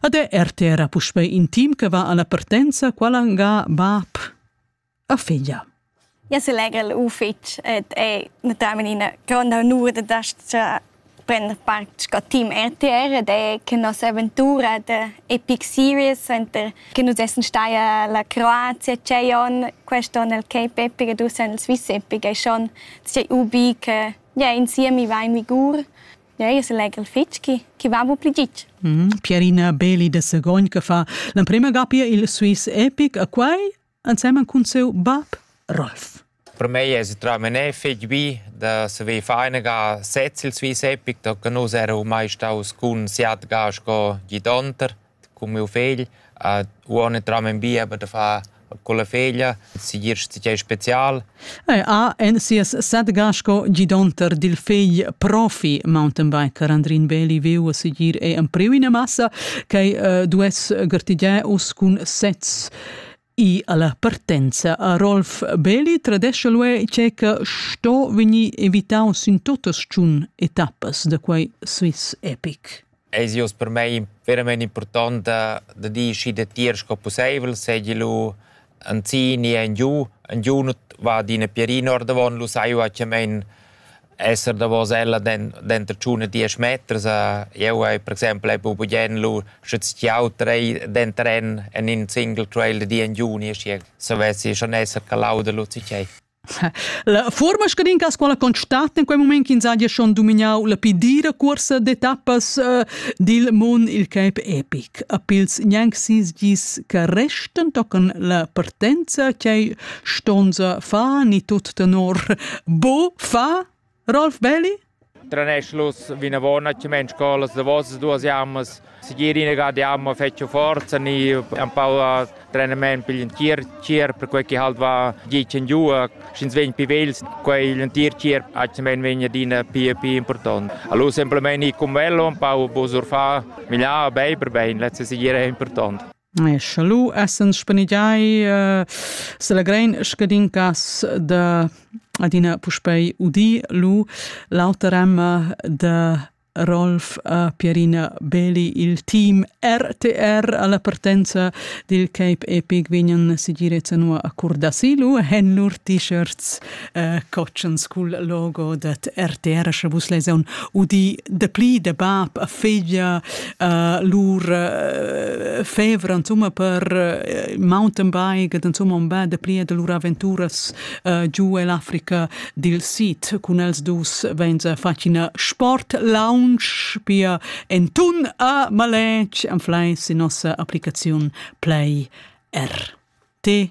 Ad è RTR puspè intim che va alla partenza, qualangà bab a figlia. Ja se legel ufitg et è naturalmente una grande onur de dastra prender part con team RTR de che nostra avventura de Epic Series enter che nus essen stai alla Croazia c'è on questo nel Cape Epic ed usen il Swiss Epic è schon sei ubi che ja insieme mi va in Vigur Ei selegel fetg che chi va bu pli gitg. Mm -hmm. Pierina Beli de Segogn che fa l'emprema gappia il Swiss Epic a quai insieme con seu bab Rolf. Per me è tra mene fetg bi da saver fare eine ga sez il Swiss Epic, da che nus eravamo mai staus con siat ga sco gidonter. cun miu fegl ad uonn entram en bieber da far con la feglia, segir tgei special. Ei ha en sias setga sco gidonter dil fegl profi mountainbiker Andrin Beli veu segir ei empriu ina massa che uh, duess gartigiar uss cun sets. I alla partenza a Rolf Belli tradescha l'UE che che sto vegnir evitau sin totas tschun etappas da quei Swiss Epic. Eis ius per mei verament important da, da dir schi da tier sco possibel, segi lu an zini en giu, en giu nut va d'ina pierina ordavon, lu sai u a che mein esser davos ella denter tschun e diesch meters a jeu hai per exempel hai buca bugen lu sche stiau trei denter en en in single trail di en juni e schier savessi schon esser calau da Luzi Tschei. La fuorma scadin cas quala constat in quei moment ch'ins haja schon domignau la pi dira cuorsa d'etappas uh, dil mund il cap epic. A pils gnanc sis gis che restan tocan la partenza ch'ei Stonza fa ni tut tenor. Bo fa Rolf Belli? Traneschlus vinavona che men scolas da vos duas jammas sigirina ga di amma fetcho forza ni un po a trenament per l'entir tier per quei che halt va gicen giu schins vegn pi vels quei l'entir tier hat men vegn adina pi pi important allora semplicemente i cum velo un po bosurfà miglià bei per bein letzte sigir è important Scha lu essend spanigiai eh, s'allegrein scadin cass da adina puspei udir lu l'auter emma da Rolf a Pierina Beli il team RTR alla partenza dil Cape Epic vegnan sigirezza nua a curdasilu hen lur t-shirts äh, cotschens cul logo dat RTR sche vus leson udi de pli de bab a figlia äh, lur äh, fevra insomma per äh, mountain bike insomma un bel de pli de lur aventuras äh, giù l'Africa dil Sid cun els dus venza facina sport lounge pia en tun a malec an fleis in nossa applicaziun play R. T